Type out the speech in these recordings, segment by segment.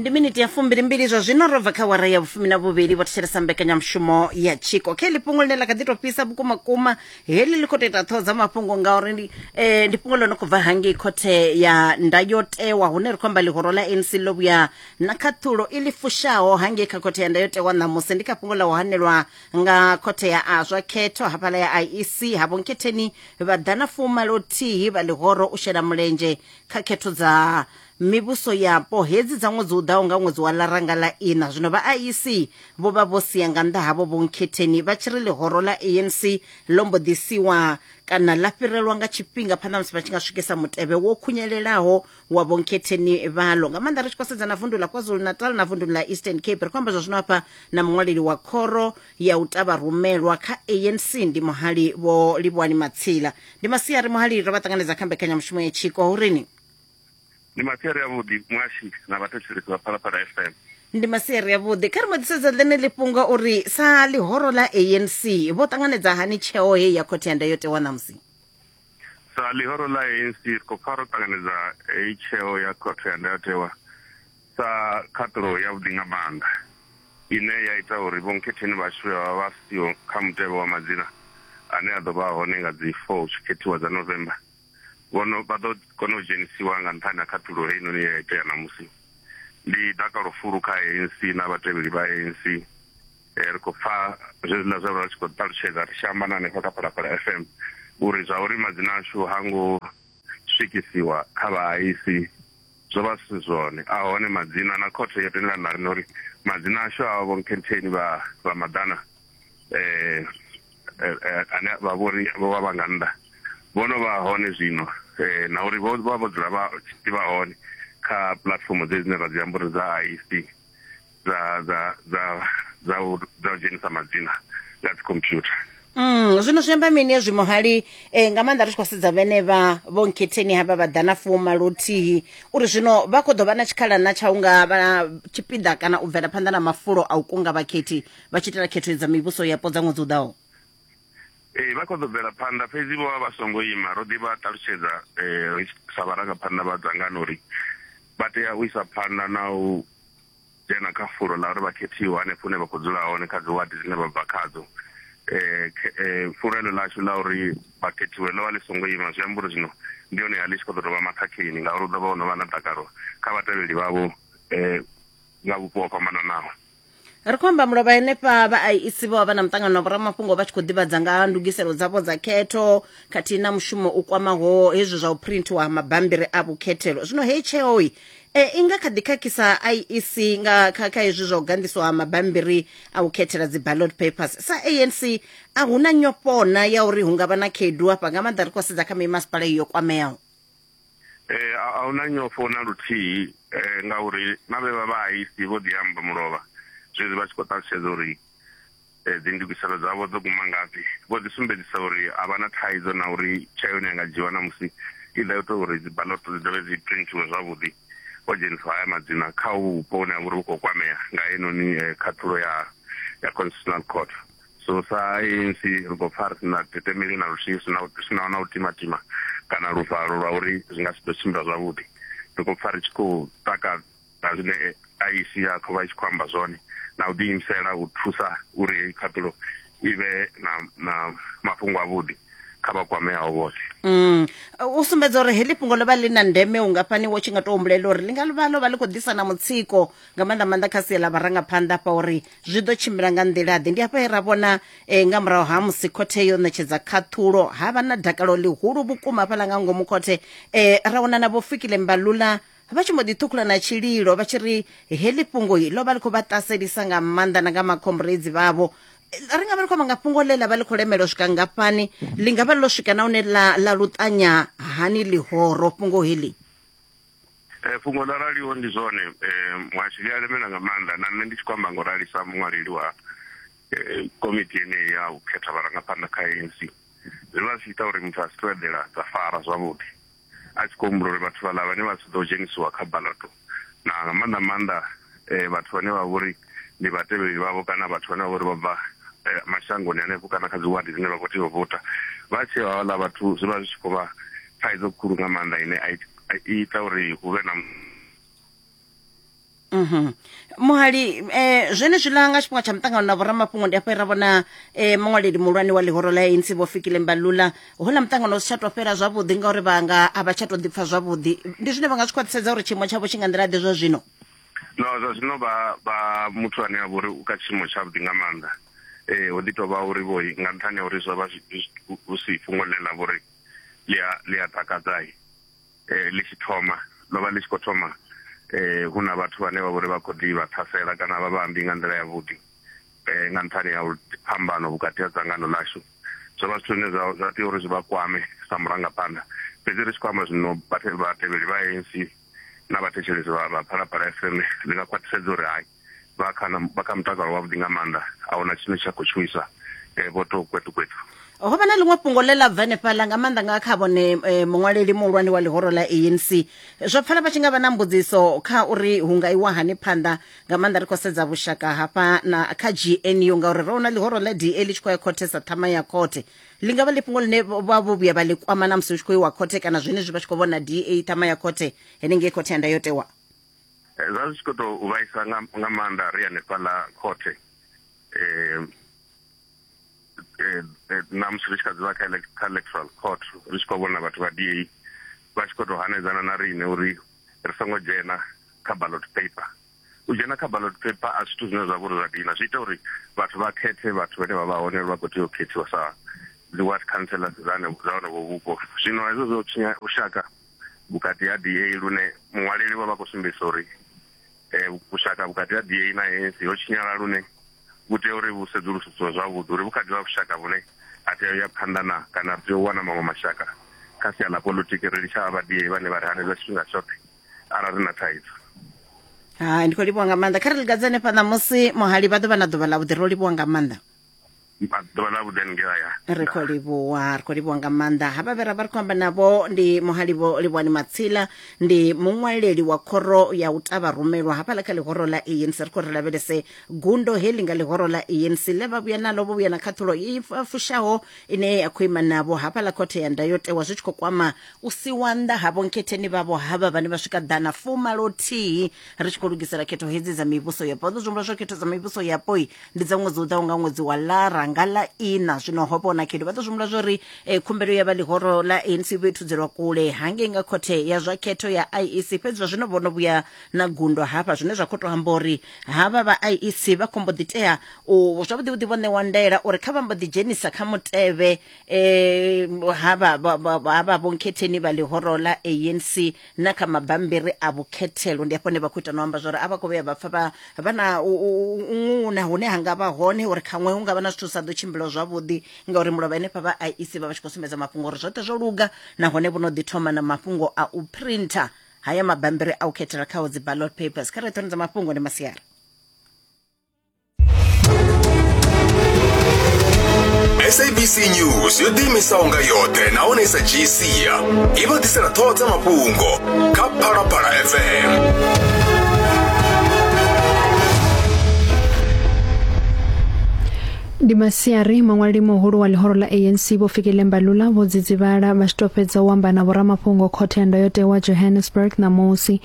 ndi miniti ya fumbilimbili zwa zwino ro bva kha wara ya vhufumi na vhuvhili vho thetshelesa mbekanyamushumo ya tshiko khe ḽi fhungo ḽine ḽa kha ḓi tou fhisa vhukuma kuma heḽi ḽi khou tou ita ṱhoho dza mafhungo ngauri ndi eh, ndi fhungo ḽo no khou bva hangei khothe ya ndayotewa hune ri khou amba ḽihoro ḽa anc ḽo vhuya na khaṱhulo i ḽi fushaho hangei kha khothe ya ndayotewa ṋamusi ndi kha fhungo ḽa u hanelwa nga khothe ya azwa khetho hafhaḽa ya iec havho nkhetheni vha ḓa na fumalo thihi vha ḽihoro u shela mulenzhe kha khetho dza mivhuso yapo hedzi dza ṅwedzi u ḓaho nga ṅwedzi wa ḽaranga ḽa ina zwino vha IEC vho vha vho sia nga nnḓa havho vho nkhetheni vha tshi ri ḽihoro ḽa ANC ḽo mbo ḓi siwa kana ḽa fhirelwa nga tshifhinga phanḓa musi vha tshi nga swikisa mutevhe wo khunyelelaho wa vho nkhetheni vhalo nga maanḓa ri tshi khou sedza na vundu ḽa KwaZulu-Natal na vundu ḽa Eastern Cape ri khou amba zwa zwino hafha na muṅwaleli wa khoro ya u ta vharumelwa kha anc ndi muhali vho livhuwani matsila ndi masiari muhali ro vha ṱanganedza kha mbekanyamushumo ya tshiko hu rini ndi masiari avhuḓi muashi na vhathetshelesi vha phalaphala f m ndi masiari avhuḓi kha ri modisedza ḽene ḽi fhunga uri sa ḽihoro ḽa anc vho ṱanganedza hani tsheo heyi ya khothe ya ndayotewa ṋamusi sa ḽihoro ḽa anc ri khou pfa ro ṱanganedza heyi tsheo ya khothe ya ndayotewa Sa khaṱulo yavhuḓi nga maanḓa ine ya ita uri vhonkhetheni vhashu vhe vha vha vha siho kha mutevhe wa madzina ane a ḓo vha hone nga dzi 4 hu tshi khethiwa dza November, vho no vha ḓo kona u dzhenisiwa nga nṱhani ha khaṱulo heinoni ye ya itea ṋamusi. Ndi dakalo fulu kha ANC na vhatevheli vha ANC. Ri khou pfa zwenezwiḽa zwe vha vha tshi khou ṱalutshedza ri tshi amba na hanefha kha Phalaphala FM uri zwa uri madzina ashu ha ngo swikisiwa kha vhahaisi, zwo vha zwi si zwone. A hone madzina na khothe yo tendelana na riṋe uri madzina ashu a vho Nkhetheni vha vha Maḓana eh, eh, eh ane vha vhori vho vha vha nga nnḓa vho no vha hone zwino eh, na uri vho vha vho dzula vha tshi vha hone kha puḽatifomo dzedzi dzine ra dzi amba uri dza IEC dza dza dza dza u dza u dzhenisa madzina nga dzi computer Mm, zwino zwi amba mini hezwi muhali eh, nga maanḓa ri tshi khou sedza vhene vha vho nkhetheni havha vha ḓa na fuma luthihi uri zwino vha khou ḓo vha na tshikhala na tsha u nga vha tshipiḓa kana u bvela phanḓa na mafulo a u kunga vhakhethi vha tshi itela khetho dza mivhuso yapo dza ṅwedzi u ḓaho ee vha khou ḓo bvela phanḓa fhedzi vho vha vha songo ima ro ḓi vha ṱalutshedza um ri tshi- sa vharangaphanḓa vha dzangano uri vha tea u isa phanḓa na u dzhena kha fulo ḽa uri vha khethiwa hanefho hune vha khou dzula hone kha dzi wadi dzine vha bva khadzo eh, eh fulo elo lashu la uri vha khethiwe ḽo vha ḽi songo ima zwi amba uri zwino ndi hone ya ḽi tshi khou ḓo tou vha makhakheni ngauri u ḓo vha ho no vha na dakalo kha vhatevheli vhavho eh nga vhupo ho fhambananaho ri khou amba mulovha henefha vha iec vho vha vha na muṱangano wa vhoramafhungo vha tshi khou ḓivhadza nga ha ndugiselo dzavho dza khetho khathihi na mushumo u kwamaho hezwi zwa u printhiwa ha mabambiri a vhukhethelo zwino hei tsheo E, i nga kha ḓi khakhisa iec nga kha kha hezwi zwa u ganḓiswa ha mabambiri a u khethela dzi ballot papers sa anc a hu na nyofhona ya uri hu nga vha na khaedu hafha nga maanḓa ri khou sedza kha mimasipala iyo kwameaho Eh, a a huna nyofho na luthihi eh, ngauri na vhe vha vha aisi vho ḓi amba mulovha zwezwi vha tshi khou ṱalutshedza uri Dzindugiselo dzavho dzo guma ngafhi? Vho ḓi sumbedzisa uri a vha na thaidzo na uri tsheo ine ya nga dzhiiwa ṋamusi i ḓo ita uri dzibaḽoto dzi dovhe dzi printhiwe zwavhuḓi. Ho dzheniswa haya madzina kha uvhu vhupo vhune ha vha uri vhu khou kwamea nga heinoni khaṱhulo ya ya Constitutional Court. So sa ANC ri khou pfa ri si na tetemeli na luthihi, ri si na ri si naho na u timatima kana luvalo lwa uri zwi nga si ḓo tshimbila zwavhuḓi. Ri khou pfa ri tshi khou taka. na zwine IEC ya khou vha i tshi khou amba zwone na u ḓiimisela u thusa uri heyi khaṱulo i vhe na, na mafhungo avhuḓi kha vha kwameaho vhoṱhe mm. u sumbedza uri heḽi fhungo ḽo vha ḽi na ndeme ungafhani wo tshi nga tou humbulela uri ḽi nga vha ḽo vha ḽi khou ḓisa na mutsiko nga maanḓa maanḓa kha sia ḽa vharangaphanḓa hafha uri zwi ḓo tshimbila nga nḓila-ḓe ndi hafha he ra vhona um nga murahu ha musi khothe yo ṋetshedza khaṱhulo ha vha na dakalo ḽihulu vhukuma hafhaḽa nga ngomu khothe um ra wana na vho fikile mbalula vha tshi mbo ḓi ṱhukhula na tshililo vha tshi ri heḽi fhungo ḽo vha ḽi khou vha ṱaselisa nga maanḓa na nga makhomburedzi vhavho ri nga vha ḽi khou amba nga fhungo ḽe ḽa vha ḽi khou lemela u swika ngafhani ḽi nga vha ḽo swika na hune ḽa ḽa luṱanya hani ḽihoro fhungo heḽi eh, fhungo ḽa raliho ndi zwone eh, muhashi ḽi a lemela nga maanḓa na nṋe ndi tshi khou amba ngo ralisa muṅwaleli wa eh, komiti yeneyi ya u khetha vharangaphanḓa kha anc zwi vha zwi tshi ita uri muthu a si tou eḓela dza fara zwavhuḓi a tshi khou humbula uri vhathu vhaḽa vhane vha si ḓo dzhenisiwa kha balato na nga maanḓa maanḓa eh, vhathu vhane vha vhori ndi vhatevheli vhavho kana vhathu vhane vha vhori vha bva eh, mashangoni hanefho kana kha dziwadi dzine vha khou tea u vota vha tsheo havhaḽa vhathu zwi vha zwi tshi khou vha thaidzo khulu nga maanḓa ine a ita uri hu vhe na Mhm. muhali eh, zwenezwiḽa nga tshifhinga tsha muṱangano na vhoramafhungo ndi afho e ra vhona eh, muṅwaleli muhulwane wa ḽihoro ḽa anc vho fikile mbalula houḽa muṱangano u si tsha tou fhela zwavhuḓi ngauri vhanga a vha tsha tou ḓipfa zwavhuḓi ndi zwine vha nga zwi khwaṱhisedza uri tshiimo tshavho tshi nga nḓila ḓe zwa zwino no zwa zwino vha vha muthu ane a vha uri u kha tshiimo tshavhuḓi nga maanḓa ee ho ḓi tou vha uri vho nga nṱhani ha uri zwo vha zwi- zwi- hu si fhungo ḽe ḽa vha uri ḽi a- ḽi a takadzai eh, ḽi tshi thoma ḽo vha ḽi tshi khou thoma eh, hu na vhathu vhane vha vhori vha khou ḓi vha ṱhasela kana vha vhambi nga nḓila yavhuḓi eh, nga nṱhani ha phambano vhukati ha dzangano ḽashu zwo vha zwithu zwine zwa tea uri zwi vha kwame sa murangaphanḓa fhedzi ri tshi khou amba zwino vhatevheli vha anc na vhathetshelesi vha phalaphala fm ndi nga khwaṱhisedza uri hai vha kha vha kha mutakalo wavhuḓi nga maanḓa ahuna tshine tsha khou tshuwisa eh, vho to kwetu kwetu ho vha na ḽiṅwe fhungo ḽe ḽa bva henefhaḽa nga maanḓa nga kha vhone eh, muṅwaleli muhulwane wa ḽihoro ḽa anc zwo pfala vha tshi nga vha na mbudziso kha uri hu nga iwa hani phanḓa nga maanḓa ri khou sedza vhushaka hafha na kha gnu ngauri ro na ḽihoro ḽa da ḽi tshi khou ya khothe sa ṱhama ya khothe ḽi nga vha ḽi fhungo ḽine vha vho vhuya vha ḽi kwama na musi hu tshi khou iwa khothe kana zwenezwi vha tshi khou vhona da ṱhama ya khothe henengei khothe ya ndayotewa Eh, zwa zwi tshi khou tou vhaisa nga maanḓa ri hanefhaḽa khothe eh, eh, na musi ri tshi kha dzivha kha electoral court ri tshi khou vhona vhathu vha da vha tshi khou tou hanedzana na riṋe uri ri songo dzhena kha ballot paper u dzhena kha ballot paper a zwithu zwine zwa vha uri zwa dina zwi ita uri vhathu vha khethe vhathu vhane vha vha hone vha khou tea u khethiwa sa dzi ward councillors dza hone vhupo zwino hezwo zwo tshinya lushaka vhukati ha DA lune muṅwaleli vha vha khou sumbedzisa uri eh, vhushaka vhukati ha DA na ANC ho tshinyala lune vhu tea uri vhu sedzulusiwe zwavhuḓi uri vhukati ha vhushaka vhune a tea u ya phanḓa na kana ri tea u wana maṅwe mashaka kha sia ḽa politiki ri litsha vha DA vhane vha ri hanedza tshifhinga tshoṱhe arali ri na thaidzo hai ndi khou livhuwa nga maanḓa kha ri ligadzane fhaḽa musi muhali vha ḓo vha na ḓuvha ḽa vhuḓi ro livhuwa nga maanḓa ḓuvha ḽa vhuḓe haningei haya ri khou livhuwa ri khou livhuwa nga maanḓa ha vha vhera vha ri khou amba navho ndi muhalivho livhuwani matsila ndi muṅwaleli wa khoro ya u tavha rumelwa hafhaḽa kha ḽihoro ḽa anc ri khou ri lavhelese gundo heḽi nga ḽihoro ḽa anc ḽe vha vhuya nalo vho vhuya na khaṱhulo i fa- fushaho ine ya khou ima navho hafhaḽa khothe ya ndayotewa zwi tshi khou kwama u siwa nnḓa havho nkhetheni vhavho havha vhane vha swika ḓana fumalo thihi ri tshi khou lugisela khetho hedzi dza mivhuso yapo vha ḓo zwi humbula zwa khetho dza mivhuso yapoi ndi dza ṅwedzi u ḓaho nga ṅwedzi wa lara nga ḽa ina zwino ho vhona khetho vha ḓo zwi humbula zwa uri eh, khumbelo ya vha ḽihoro ḽa anc vho i thudzelwa kule hangei nga khothe ya zwa khetho ya iec fhedzi zwa zwino vho no vhuya na gundo hafha zwine zwa khou tou amba uri havha vha iec vha khombo ḓi tea u zwavhuḓi vhuḓi vho ṋewa ndaela uri kha vha mbo ḓi dzhenisa kha mutevhe eh, havha vha- vha- havha vhonkhetheni vha ḽihoro ḽa anc na kha mabambiri a vhukhethelo ndi hafho hune vha khou ita no amba zwori a vha khou vhuya vha pfa vha vha na u- u- u- ṅuna hune ha nga vha hone uri khaṅwe hu nga vha na zwithu zwi sa ḓo tshimbila zwavhuḓi ngauri mulovha henefha vha iec vha vha tshi khou sumbedza mafhungo uri zwoṱhe zwo luga nahone vho no ḓi thoma na mafhungo a u printer haya mabambiri a u khethela khao dzi ballot papers kha re thonedza mafhungo ndi masiari sabc news yo ḓiimisaho nga yoṱhe nahone sa dzhii sia i vha ḓisela ṱhoho dza mafhungo kha phalaphala fm ndi masiari maṅwaleli muhulu wa ḽihoro ḽa anc vho fikile mbalula vho dzidzivhala vha tshi tou fhedza u amba na vhoramafhungo khothe ya ndayotewa johannesburg ṋamusi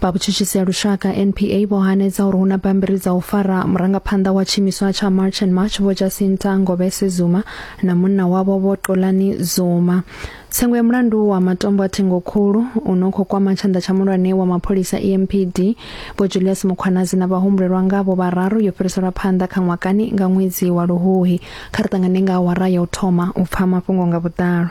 vha vhutshutshisi ha lushaka npa vho hanedza uri hu na bammbiri dza u fara murangaphanḓa wa tshiimiswa tsha march and march vho jacinta ngobese zuma na munna wavho vho xolani zuma tsengo ya mulandu wa matombo a thengokhulu u no khou kwama tshanḓa tsha mulwane wa mapholisa empd vho julius mukhwanazi na vhahumbulelwa ngavho vhararu yo fhiriselwa phanḓa kha ṅwakani nga ṅwedzi wa luhuhi kha ri ṱangane nga awara ya u thoma u pfa mafhungo nga vhuḓalo